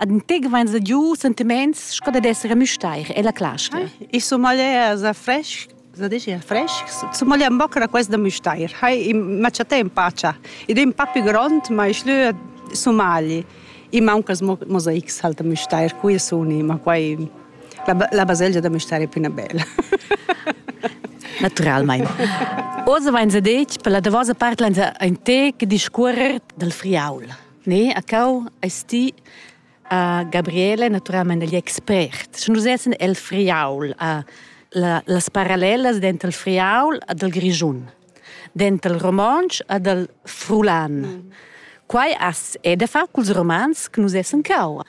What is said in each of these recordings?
ad in tec vain sa giu sentiments sco dad esser a müstair e la clasca. Ich so male sa fresh, sa dici fresh, so male am boccra quest da müstair. Hai ma chatta in pacia. Ed in papi grond, ma ich lü Somali. I manca mosaics halt da müstair, qui suni, ma quai la, la baselgia da müstair è più una bella. Naturalmente. Oz vain sa detg per la davosa part l'han in tec discuorrer dal friaul. Ne, a cau eis ti a Gabriele naturalmein egl expert. Sche nus essen el Friaul, a la, las parallelas denter il Friaul e dal Grischun, denter il romontsch e dal frulan. Mm. Quai as è da far culs romans che nus essen cau.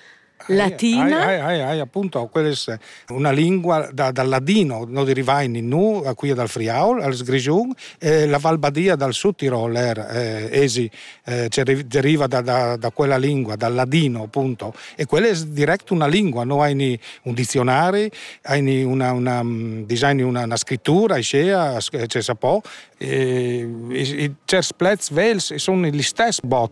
Latina. Hai, hai, hai, appunto, quella è una lingua da, dal ladino, noi derivai in nu, a quia dal Friaul, als Grigiun, e la Valbadia dal Sud Tirol er, eh, esi, eh, deriva da, da, da, quella lingua, dal ladino, appunto. E quella è direct una lingua, noi hai un dizionario, hai una, una, disegni una, una scrittura, iscea, c'è sa po, e, e, e certi plets vels sono gli stessi bot.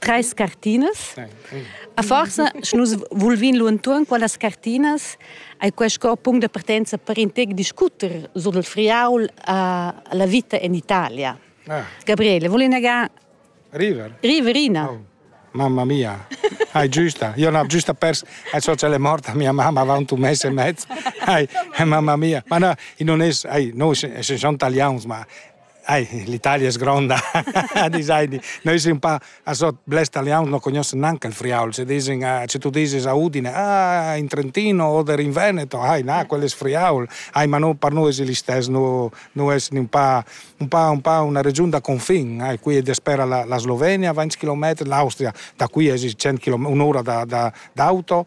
treis cartinas. A forsa, sche nus vulvin lu entuorn quellas cartinas, ei quei sco punct de partenza per in tec discuter sur il friaul uh, la vita in Italia. Ah. Gabriele, voli negar? River. Riverina. Oh. Mamma mia, hai giusta. Io non ho giusta pers al sociale morta, mia mamma va un mese e mezzo. Ai, mamma mia. Ma no, non es, ai, noi se sono italians, ma Ai, l'Italia es gronda, disaini. Noi sin un pa a so blers talians no cognoschen nanca il friaul, se dizin, se tu dizis a Udine, ah, in Trentino oder in Veneto, ai, na, quello es friaul. Ai, ma no, per noi es l'istes, no, no es un pa, un pa, un pa una region da confin. Ai, qui despera la, la Slovenia, 20 km, l'Austria, da qui es 100 km, un'ora da, da, d'auto,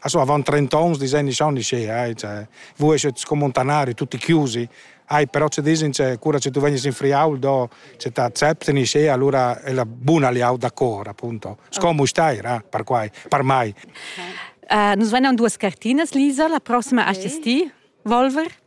Also avant 30 ans disegni schon nicht schön. Cioè, voi esce con montanari tutti chiusi. Ai, però ci dicen cioè, cura se tu vegni in friaul do se t'accepti ni sce, allora è la buona liau d'accord, appunto. Scomo stai, ra, per quai, per mai. Uh, nos vegnan duas cartinas, Lisa, la prossima okay. a ti, Volver.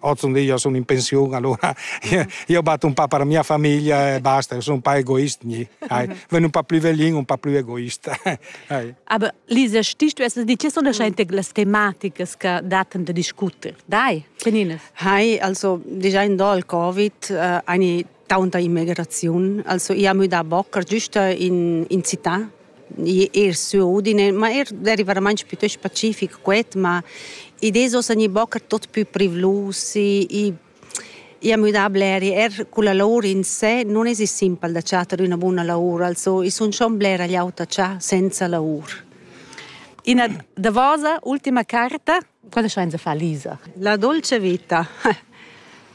Ozendi io sun in pensiun, allura io bat un pa per mia famiglia e basta, io sun un pa egoist gni. Vegn un pa plü veglin, un pa plü egoist. Aber Lisa, stichst du essas di, che sun daschainte las tematicas che daten da discuter? Dai, Canines. Hai, also, déjà in do al Covid, äh, eine taunt immigraziun, also i ha müdà bocker giusta in, in città er su Udine, ma er derivaramain piuttost pacific quet, ma i deso san i bocker tot più privlus, i, i i è müdà bler, er con la lavor in sé non es simpel da chatter üna buna lavor, also i sun schon bler agliauta cha senza lavor. Ina davosa, ultima carta, Cosa schainza far Lisa? La dolce vita.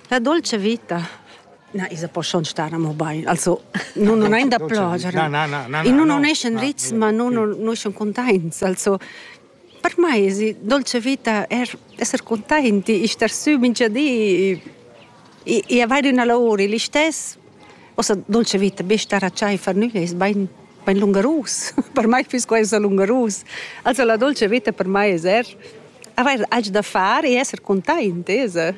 La dolce vita. Na, isa po schon stare amo bain. Also, non non ein da piangere. Na, na, na, na. In non esce ritz, ma non non sono contents. Also, per me, si dolce vita è essere contenti, star su minchia di I vai d'üna lavur il istess. Ossa dolce vita be star a chai far nügl es bain bain lungarus. per mai füss quai ussa lungarus. Also la dolce vita per mai es er avair alch da far e esser containt, esa.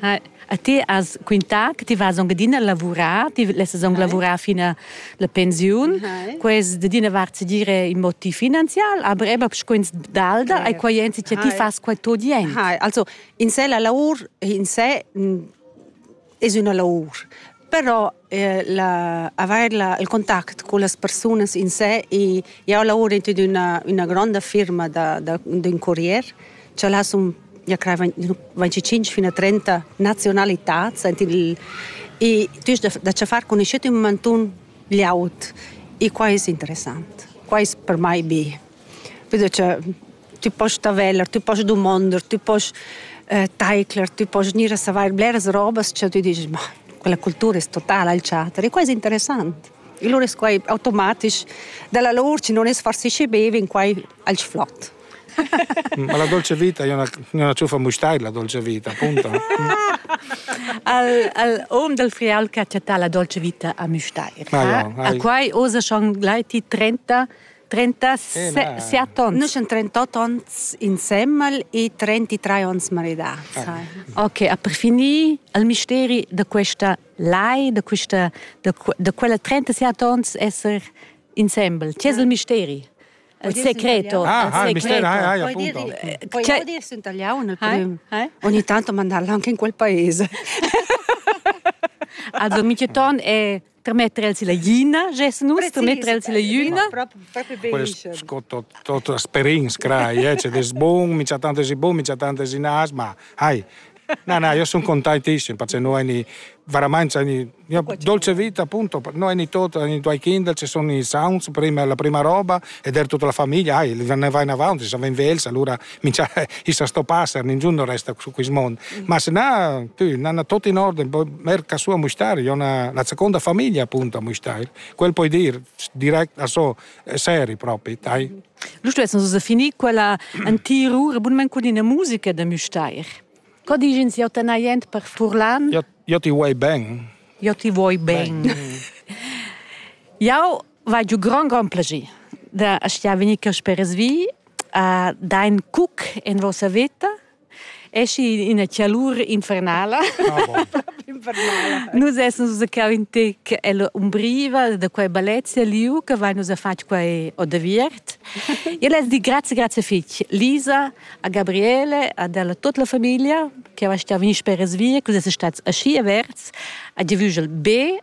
A ti has quintà che ti vas anc adina a lavurar, ti lessas anc lavurar fin a la pensiun. Quest d'ina vart si dire in motiv finanzial, aber eben scuins d'alda, e quai ensi che ti fas quai tot jent. Also In sè la laur in sè es üna laur. Però eh, la, avair la, il contact con las persunas in sè e jau lavoro in üna, üna gronda firma da, da, d'ün corrier cha là sun ja craivan 25 fino a 30 nazionalitats ent il e tu da, da cha far conoscet ün mantun liaut e qua es interessant. Qua es per mai be Vedo cha tü post taveller, tü post dumonder, tü post eh, taicler, tü post gnir a savair bleras robas cha tü disch, ma quella cultura es totala al chater. E quai es interessant. E lura es quai automatisch dalla lur chi non es farsisce be vegn quai al flot. Ma la dolce vita è una, una ciuffa mustair la dolce vita, appunto. al, al om dal frial che ha chattà la dolce vita a Mustair. Ah, ja, a quai osa schon gleiti 30 37 onns. Nus sind 38 onns insemmel e 33 onns maridà. Sai. Ok, a per finir il misteri da questa lai, da, questa, da, da quella 37 onns esser insembel. C'è il misteri? Il segreto. Ah, il ah, il mistero, ah, ah, appunto. Puoi dire sunt tagliaun, ogni tanto mandarla anche in quel paese. Also, Micheton è Termetter el si la gina, gessen nus, termetter el si la jüna. Poi sco tot tot asperins crai, eh, c'è des bun, mi c'ha tante si bun, mi c'ha tante si nas, ma hai. Na, na, io sono contentissimo perché noi ni veramente ni io dolce vita appunto noi ni tot ni due kinder ci sono i sounds prima la prima roba ed era tutta la famiglia ai ne vai in avanti se va in velsa allora mincha ista sto passer, ningiun non resta su quis mond. Mm. Ma se na, tü, nana tot in orden, merca sua mustair, io na la seconda famiglia appunto a mustair. Quel poi dir direct a so seri propri, tai. Lu stessan so finì quella antiru rebunment cun ina musica da mustair. Co digen si autanajent per furlan? Io, io ti vuoi ben. Io ti vuoi ben. ben. Jau vai giu grand grand plaisir da stiar venir per resvi Dein cuc in vossa veta eschi ina chialur infernala. infernala. Nus essens nus cau in tec ella umbriva da quei balezia liu che vai nus a fatg quei o da viert. Io les di grazie grazie fitg Lisa, a Gabriele, ad ella tutta la famiglia che va stau vin sper es via, che es stats aschi averts a divügel be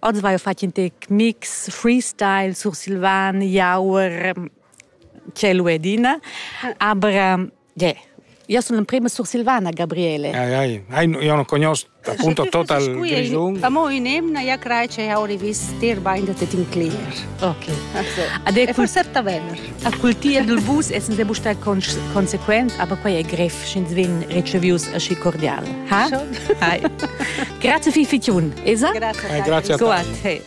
Oz vai fatg in tec mix, freestyle, sursilvan, jauer, cielo e dina. Aber yeah, io sono l'emprima sursilvana, Gabriele. Ai, ai, ai, io non conosco appunto total Grigiun. Amo in emna ja crai che auri vis tirba in de in clear. Ok. Ade e forse Tavener. A cultia dil bus essens e buca consequent, aber quei è greff, sch'ins vegn ricevius aschi cordial. Ha? Hai. Grazie fi fichun. Esa? Grazie. Grazie. Go a te.